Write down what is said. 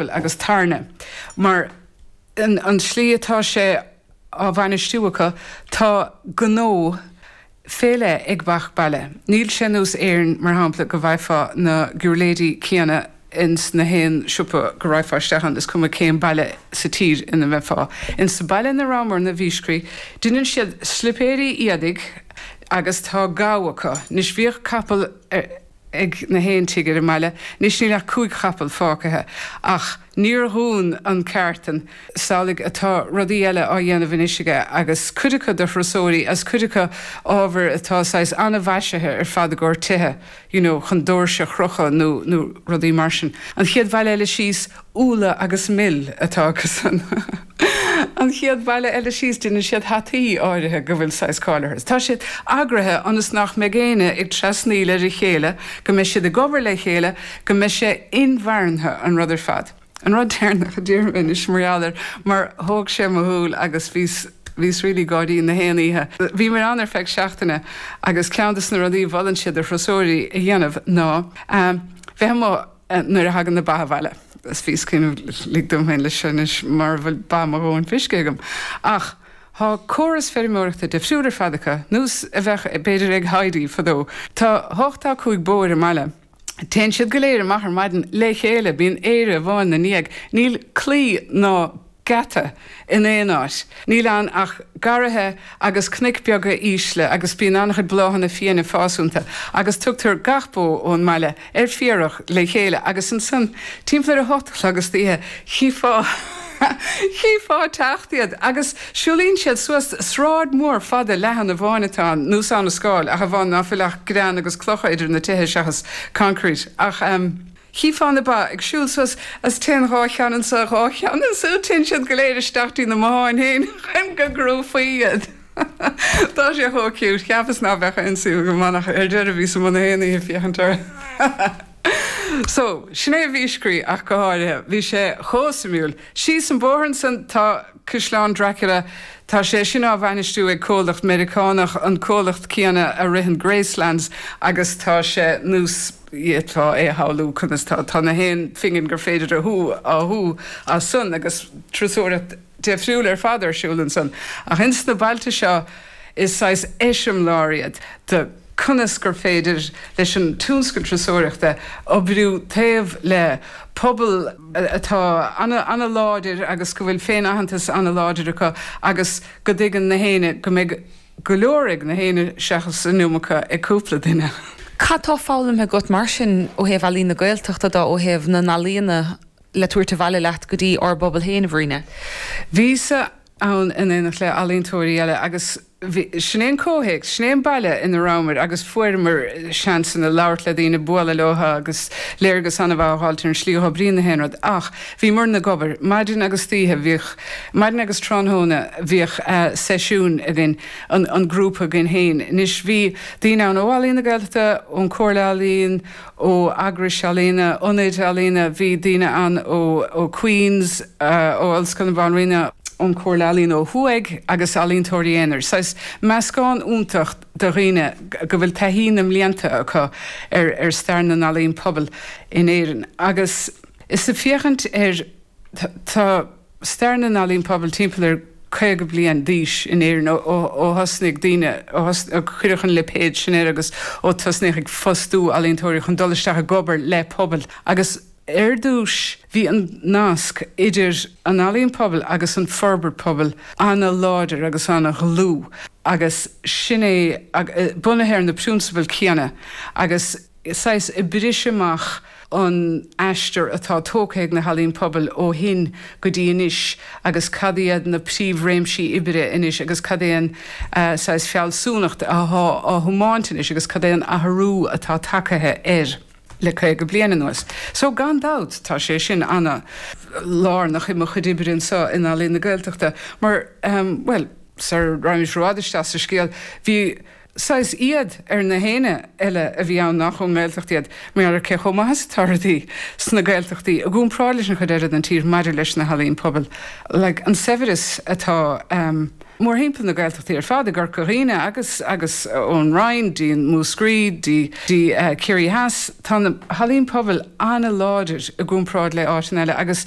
Bhuel, agus tairne. Mar an tslí atá sé á bhainistiú acu, tá gnó fé leith ag gach baile. Níl sé nós Éirinn, mar shampla, go bhfaighfeá na giuirléidí céanna ins na haon siopa go raghfá isteach ann, is cuma cén baile sa tír ina mbeifeá. Ins sa baile ina rabhamarna, Viscri, deineann siad slipéirí éadaigh agus tá gabha acu. Anois, bhíodh capall ar. ag na haon tigh ar an mbaile, anois níl ach cúig chapall fágtha, ach níor dhún an ceártan. Is amhlaidh atá rudaí eile á dhéanamh anois aige, agus cuid acu do thurasóirí, agus cuid acu ábhair atá saghas an-mhaisithe ar fad i gcomhair tithe, you know, chun doirse a chrochadh nó rudaí mar sin. An chéad bhaile eile síos, Úlla agus mil atá acusan. An chéad bhaile eile síos, déanann siad hataí áirithe go bhfuil saghas cáil orthu. Tá siad eagraithe ionas nach mbeidh éinne ag trasnaíl ar a chéile, go mbeidh siad ag obair le chéile, go mbeidh sé inmharthana an rud ar fad. An rud deireanach a déarfaidh mé anois mar gheall air mar thóg sé mo shúil agus bhíos, bhíos really ag gáirí na haon oíche. Bhíomar ann ar feadh seachtaine agus ceann de na rudaí a mholann siad do thurasóirí a dhéanamh ná bheith amuigh, nuair a thagann na ba abhaile. Is bhíos ag cuimhneamh, lig dom féin leis seo anois, mara bhfuil ba mo dhóthain feiscithe agam. Ach tá córas feirmeoireachta difriúil ar fad acu nós a bheadh b'fhéidir ag Heidi fadó. Tá ochtó cúig bó ar an mbaile. Téann siad go léir amach ar maidin le chéile, bíonn aoire amháin 'na ndiaidh. Níl claí ná. geata in aon áit. Níl ann ach garraithe agus cnoic beaga ísle agus bíonn an-chuid bláthanna fiaine ag fás iontu agus tugtar gach bó ón mbaile ar féarach le chéile agus ansan timpeall ar a hocht a chlog istoíche chífeá chífeá ag teacht iad agus siúlaíonn siad suas sráid mhór fada leathan amháin atá ann nós Abhainn an Scáil ach amháin ná fuil ach grean agus clocha idir na tithe seachas concrete ach. Chífeá na ba ag siúl suas is téann dhá cheann anso, dhá cheann ansiúd, téann siad go léir isteach dtí na mbotháin féin chun go gcrúfaí iad. Tá sé chomh cute, cheapas ná beadh aon suim agam ann ach ar deireadh bhíos amuigh na haon oíche ag féachaint orthu. So, sin é Viscri ach go háirithe. Bhí sé chomh suimiúil. Síos an bóthar ansan tá. Caisleán Dracula. Tá sé sin á bhainistiú ag comhlacht Meiriceánach, an comhlacht céanna a ritheann Gracelands agus tá sé nós fhéadfá é a shamhlú conas tá tá na haon phingin gur féidir a shú á shú as san agus turasóireacht deifriúil ar fad ar siúl ansan. Ach ins na bailte seo is saghas eiseamláir iad de. conas gur féidir leis an tionscal turasóireachta oibriú taobh le pobal atá an-láidir agus go bhfuil féin-aitheantas an-láidir acu agus go dtuigeann gach éinne go mbeidh go leor ag gach éinne seachas an iomarca ag cúpla duine. Cad tá foghlamtha agat mar sin ó thaobh Ealaín na Gaeltachta de, ó thaobh na n-ealaíona le tabhairt abhaile leat go dtí ár bpobal féin, a Bhríd? Bhíos-sa ann in éineacht le ealaíontóirí eile agus. Sin é an comhthéacs, sin é an baile ina rabhamar agus fuaireamar seansanna labhairt le daoine, bualadh leo agus léargas an-mhaith a fháil ar an slí a oibríonn gach aon rud. Ach bhíomar ag obair. Maidin agus d'oíche, bhíodh, maidin agus tráthnóna, bhíodh seisiúin againn, an grúpa againn féin. Anois, bhí daoine ann ó Ealaín na Gaeltachta, ón Comhairle Ealaíon, ó eagrais ealaíona, ionaid ealaíona, bhí daoine ann ó Queen's, ó Ollscoil na Banríona, ón Chomhairle Ealaíon ó thuaidh agus ealaíontóirí aonair, saghas meascán iontach de dhaoine go bhfuil taithí na mblianta acu ar stair na n-ealaíon pobail in Éirinn. Agus is ag féachaint ar, tá. stair na n-ealaíon pobail timpeall ar 50 bliain d'aois in Éirinn ó thosnaigh daoine, ó cuireadh an lipéad sin air agus ó tosnaíodh ag fostú ealaíontóirí chun dul isteach ag obair le pobail agus ar dtús bhí an nasc idir an ealaíon pobail agus an forbairt pobail an-láidir agus an-dhlúth agus sin é, bunaithe ar na prionsabail chéanna agus. saghas ag oibriú amach an aistear atá tógtha ag na hEalaín Pobail ó shin go dtí anois agus cad iad na príomhréimsí oibre anois agus cad é an saghas fealsúnacht atá á thiomáint anois agus cad é an athrú atá tagtha air le caoga bliain anuas. So gan dabht tá sé sin ana lárnach i mo chuid oibre anseo in Ealaín na Gaeltachta mar, bhuel, sar a raibh mé i bhfad isteach sa scéal, bhí. Saghas éad ar gach éinne eile a bhí ann nach ón nGaeltacht iad, mar cé chomh maith is atá rudaí sna Gaeltachtaí i gcúmparáid leis an chuid eile den tír maidir leis na healaíon pobail, like an saibhreas atá mórthimpeall na Gaeltachtaí ar fad, i gCorca Dhuibhne agus agus ón Rinn dtí Múscraí dtí dtí Ciarraí Theas, tá na healaíon pobail an-láidir i gcúmparáid le áiteanna eile agus.